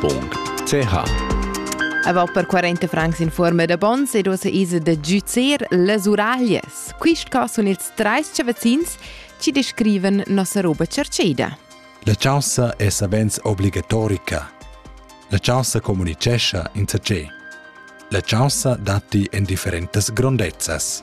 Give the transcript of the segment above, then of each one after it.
www.ch Avau per 40 francs in forma da bons ed ossa isa da giuzer las uraglias. Quist cas sun ils trais chavazins ci descrivan nossa roba cerceda. La chaussa è savens obligatorica. La chaussa comunicescha in ce. La chaussa datti en differentas grondezzas.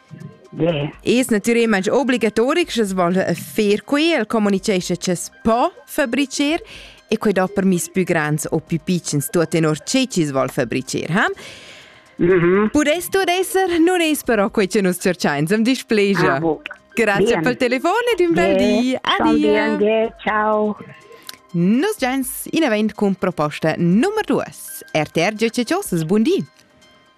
Es natüralmaing obligatoric scha's voglia fer que, el comunichescha cha's po fabricher e quai do permiss pü grands o pü pitschens tuot tenor che chi's vogl fabricher, ha? Mm-hmm. Pudess tuot esser, nun es però quai cha nus tscherchains, am displegia. Ah, Grazie Bien. pel telefon ed un bel di. Adia. Anche, ciao. Nus giains inavant cun proposta nummer 2. RTR GCCOS, buon di.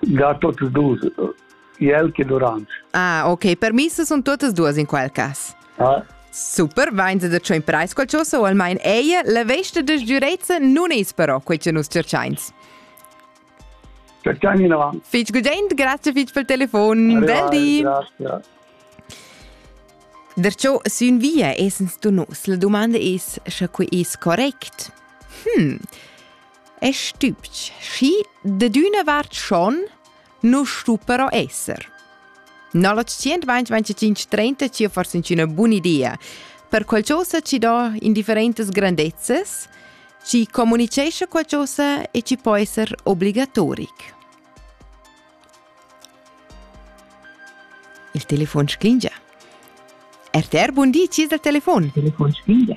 da totes dus, el che Durange. Ah, ok, permisse sono tutte e due in quel caso. Ah. Super, vains da ciò in preis qualcosa o almain eia, la vesta de giurezza non es però quei che nus cerchains. Cerchiani in avanti. Fitch gudent, grazie fitch pel telefon. Del di. Grazie. Derciò sün via esens du nos. La domanda es, sche quei es correct? Hm. è stübch, schi da d'üna vart schon nu stu però esser. No la 125-30 ci forse una buona idea, per qualcosa ci dà indifferentes grandezzes, ci comunicesce qualcosa e ci può essere obbligatoric. Il telefon sclingia. RTR, buon di, ci è il telefon? Il telefon sclingia.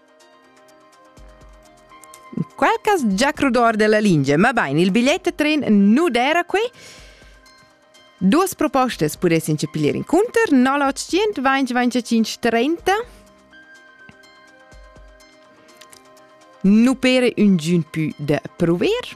Qualcas già crudor della lingia, ma bain, il bigliet de tren nu d'era qui. Duas propostas pudessin ci piglier inconter, 0800 2025 30 nu pere un giun pü da prover